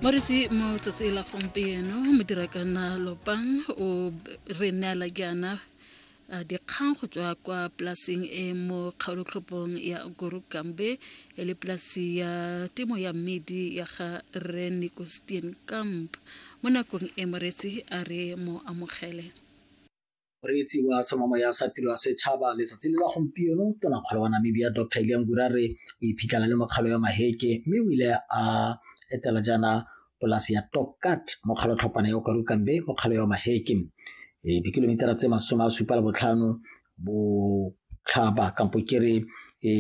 moresi mo tsatsi la gompieno modirakana lopang o re neela jaana ah, dikgang go tswa kwa polaseng e mo kgaolotlhopong ya gorukambe e le polasi ya temo ya mmidi ya ga re nicostien camp mo nakong e moretsi a re mo amogele moreetsi wa somamo ya sa tiro ya setšhaba letsatsi le la gompieno tona kgolo wa namibia dr elian gurare o iphitlhela le mokgalo ya maheke mme o ile a etela jaana polasi ya tokat mo kgalotlhopana ya okarukambe mo kgalo ya maheke e dikilomitara tse masome a supa le botlhano botlhaba kampo kere e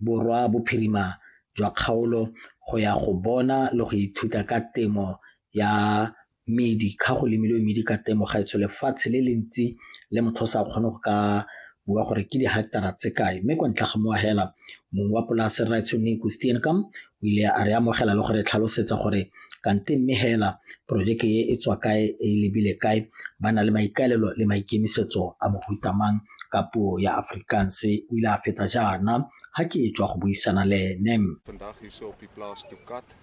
borwa bophirima jwa kgaolo go ya go bona le go ithuta ka temo ya medi ga go lemilwe medi ka temo ga etsho lefatshe le le ntsi le motho o sa kgone go ka bua gore ke dihectara tse kae mme kwa ntle ga moagela mong wa polase raitsho neko steenkam o ile a re amogela le gore tlhalosetsa gore kante mme hela porojeke e e tswa kae e lebile kae ba na le maikaelelo le maikemisetso a mohutamang ka puo ya Afrikaans o ile a feta jaana ha ke tswa go buisana le ene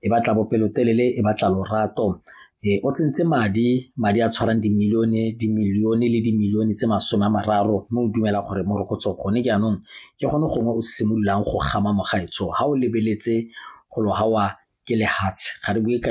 e batla bopelotelele e batla lorato e o tsentse madi madi a tshwarang dimilione dimilione le dimilione tse masome a mararo mme o dumela gore morokotso gone jaanong ke gone gongwe o simololang go gama mogaetsho ga o lebeletse go lo gawa ke lehatshe ga re bue ka